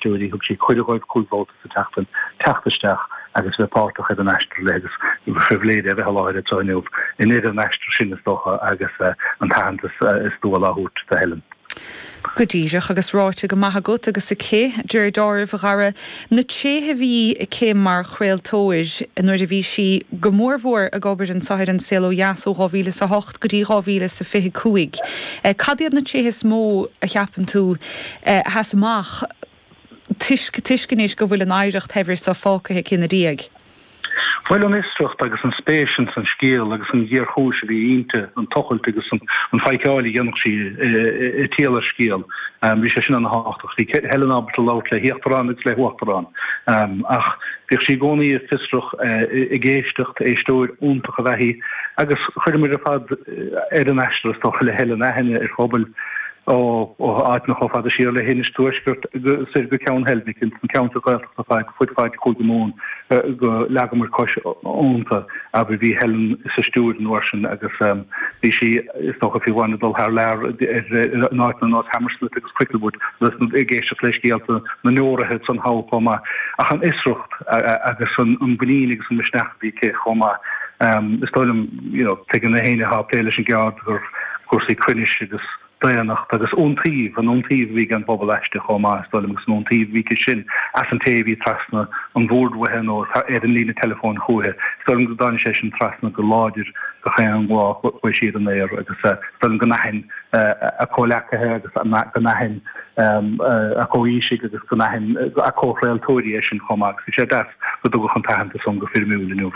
Thug sí cuireadh dóibh cúig bhabhta sa tseachtain teacht isteach agus bheith páirteach ar an aistear léi agus ba phribhléid é a bheith i láthair anseo inniu i ndeireadh an aistir sin is dócha agus an t-aitheantas is dual á thabhairt do Helen. Go díreach agus ráite go maith agat agus aici. I ndáiríribh a Dhara, na tréithe a bhí aici mar chraoltóir nuair a bhí sí go mór mhór ag obair anseo ar An Saol ó Dheas ó 2000 is a hocht. go dtí 2025. Cad iad na tréithe is mó a cheapann tú a sheas amach toisc anois go bhfuil an oidhreacht shaibhir seo fágtha aici ina diaidh? Bhuel, an fhiosracht agus an spéis ins an scéal agus an ghéarchúis a bhí inti, an tochailt agus an tseiceáil a dhéanfadh sí i dtaobh scéal, bhí sé sin ana thábhachtach. Bhí Helen ábalta labhairt le híochtarán agus le huachtarán ach. Bhíodh sí i gcónaí fiosrach, ag éisteacht, éisteoir iontach ab ea í agus chuireamar ar fad ar an aistear is dócha le Helen aithne ar phobail ó áiteanna chomh fada siar le hInis Tuaisceart soir go Ceann Heilbhic, ins na ceantair Ghaeltachta ar fud fad Chúige Mumhan go leagamar cos iontu. Agus bhí Helen sa stiúideo an uair sin agus bhí sí, is dócha, fiú amháin ag dul thar lear in áiteanna ar nós Hammersmith agus Cricklewood agus ag éisteacht le scéalta na ndeoraithe san Abha chomh maith. Ach an fhiosracht agus an mhuinín agus an misneach a bhí aici chomh maith. Is dóigh liom, you know, tuigeann aon éinne atá á plé leis an gceird gur cúrsaí cruinnis agus. daonnacht agus iontaoibh, an iontaoibh a bhí ag an bpobal aisti chomh maith, is dóigh liom, agus an iontaoibh a bhí aici sin as an té a bhí trasna an bhoird uaithi nó ar an líne teileafóin chúithi. Is dóigh liom go dtáinig sé sin trasna go láidir gach aon lá a chuaigh sí ar an aer agus is dóigh liom go n-aithníonn a comhghleacaithe agus go n-aithníonn a comhaoisigh agus go n-aithníonn a comhchraoltóirí é sin chomh maith agus bhí sé deas go dtugadh an t-aitheantas san go foirmiúil inniu.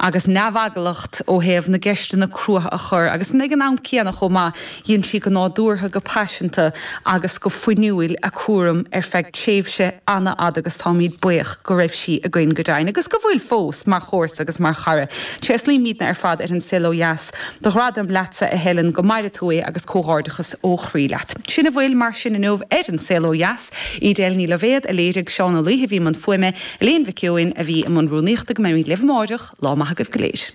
agus neamheaglacht ó thaobh na gceisteanna crua a chur agus ag an am céanna chomh maith dhein sí go nádúrtha, go paiseanta agus go fuinniúil a cúram ar feadh tréimhse an-fhada agus táimíd buíoch go raibh sí againn go deimhin agus go bhfuil fós mar chomharsa agus mar chara. Tréaslaímídne ar fad ar an Saol Ó Dheas do ghradam leatsa a Helen, go maire tú é agus comhghairdeachas ó chroí leat. Sin a bhfuil mar sin inniu ar an Saol Ó Dheas. Edel Ní Loibhéad a léirigh Seán Ó Laoithe a bhí i mbun fuaime, Elaine Mhic Eoin a bhí i mbun rúnaíochta Go mbeimid libh amárach, lá maith agaibh go léir.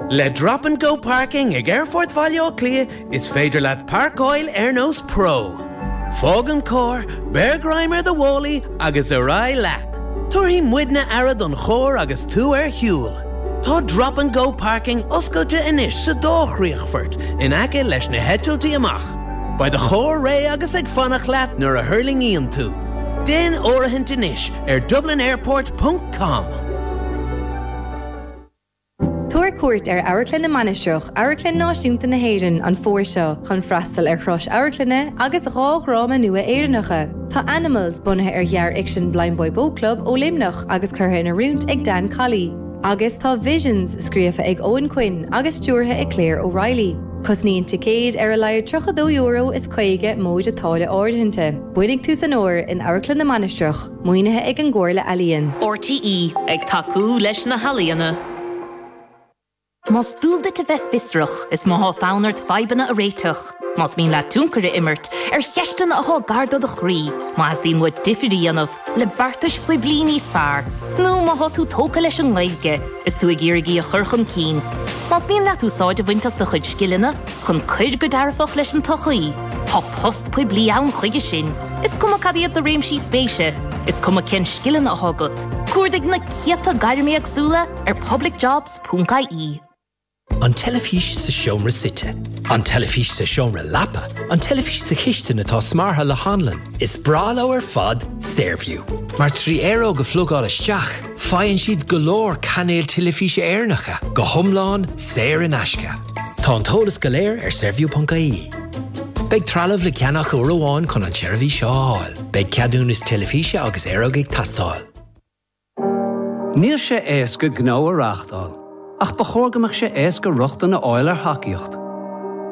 Le Drop and Go Parking ag Aerfort Bhaile Átha Cliath is féidir leat parcáil ar nós pro. Fág an carr, beir greim ar do mhálaí agus ar aghaidh leat. Tabharfaidh muidne aire don charr agus tú ar shiúl. Tá Drop and Go Parking oscailte anois sa dá chríochfort in aice leis na heitiltí amach. Beidh do charr réidh agus ag fanacht leat nuair a thuirlingíonn tú. Déan áirithint anois ar dublinairport ponc com. Tabhair cuairt ar Amharclann na Mainistreach, Amharclann Náisiúnta na hÉireann, an fómhar seo chun freastal ar thraidisiún amharclainne agus dhá dhráma nua Éireannacha. Tá Animals, bunaithe ar ghearrfhicsean Blindboy Boatclub ó Luimneach agus curtha in oiriúint ag Dan Colley, agus tá Visions, scríofa ag Eoin Quinn agus stiúrtha ag Claire O'Reilly. Cosnaíonn ticéid ar a laghad €32 is 50 móide táille áirithinte. Bainigí taitneamh as an bhfómhar in Amharclann na Mainistreach. Maoinithe ag an gComhairle Ealaíon. RTÉ ag tacú leis na healaíona. Más dual duit a bheith fiosrach, is má thá fonn ort fadhbanna a réiteach, más mian leat tionchar a imirt ar cheisteanna athá gar do do chroí, má theastaíonn uait difir a dhéanamh le beartais phoiblí níos fearr, nó má thá tú tógtha leis an nGaeilge is tú ag iarraidh í a chur chun cinn, más mian leat úsáid a bhaint as do chuid scileanna, chun cur go dearfach leis an tsochaí. Tá post poiblí ann chuige sin, is cuma cad iad do réimsí spéise, is cuma cén scileanna atá agat, cuardaigh na céadta gairm éagsúla ar publicjobs.ie. An teilifís sa seomra suite. An teilifís sa seomra leapa. An teilifís sa chistin atá smeartha le hanlann. Is breá leo ar fad Saorview, mar trí aeróg a phlugáil isteach, Faigheann siad go leor cainéil teilifíse Éireannacha go hiomlán saor in aisce. Tá an t-eolas go léir ar saorview.ie. Beidh trealamh le ceannach uair amháin chun an tseirbhís seo a fháil. Beidh ceadúnas teilifíse agus aeróg ag teastáil. Níl sé éasca gnó a reáchtáil, ach ba chóir go mbeadh sé éasca rochtain a fháil ar thacaíocht.